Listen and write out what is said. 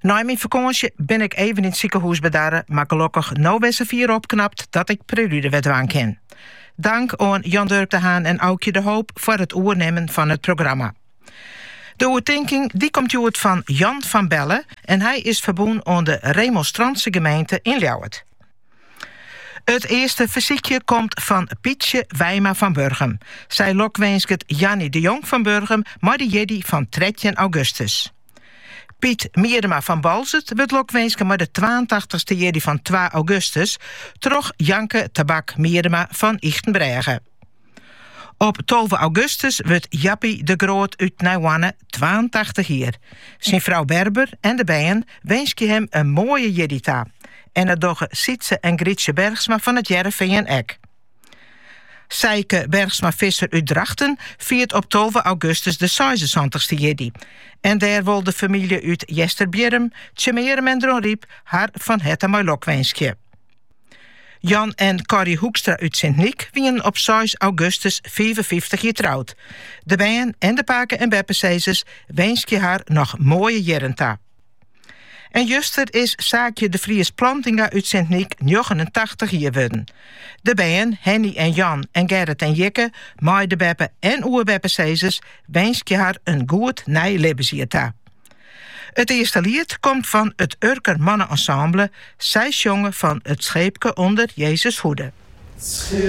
Nei myn fakânsje bin ik even yn it sikehûs bedarre, mar gelokkich no wer safier opknapt dat ik prelude wer dwaan kin. Dank oan Jan Durk de Haan en Aukje de Hoop foar it oernimmen fan it programma. De oertinking dy komt hjoed fan Jan van Belle en hy is ferbûn oan de Remonstrantse gemeente yn Ljouwert. It earste fersykje komt fan Pietsje Wijma fan Burgum. Sy lokwinsket Jannie de Jong fan Burgum mei de jierdei fan trettjin augustus. Piet Miedema fan Boalsert wurdt lokwinske mei de twaentachtich-ste jierdei fan twa augustus troch Janke Tabak Miedema fan Ychtenbrêge. Op tolve augustus wurdt Jappie de Groot út Nijhoarne twaentachtich jier. Syn frou Berber en de bern winskje him in moaie jierdei ta. En dat dogge Sytze en Grytsje Bergsma fan It Hearrenfean ek. Sijke Bergsma-Visser út Drachten fiert op tolve augustus de seisensantich-ste jierdei en dêr wol de famylje út Easterbierrum, Tsjummearum en Dronryp har fan herte mei lok winskje. Jan en Corrie Hoekstra út Sint-Nyk wienen op seis augustus fiifenfyftich jier troud. De bern en de pake- en beppesizzers winskje har noch moaie jierren ta. En juster is Saakje de Vries Plantinga út Sint-Nyk 89 jier wurden. De bern, Henny en Jan en Gerrit en Jikke, mei de beppe- en oerbeppesizzers winskje har in goed nij libbensjier ta. It earste liet komt fan it Urker Mannenensemble. Sy sjonge fan 't Scheepke onder Jezus' hoede.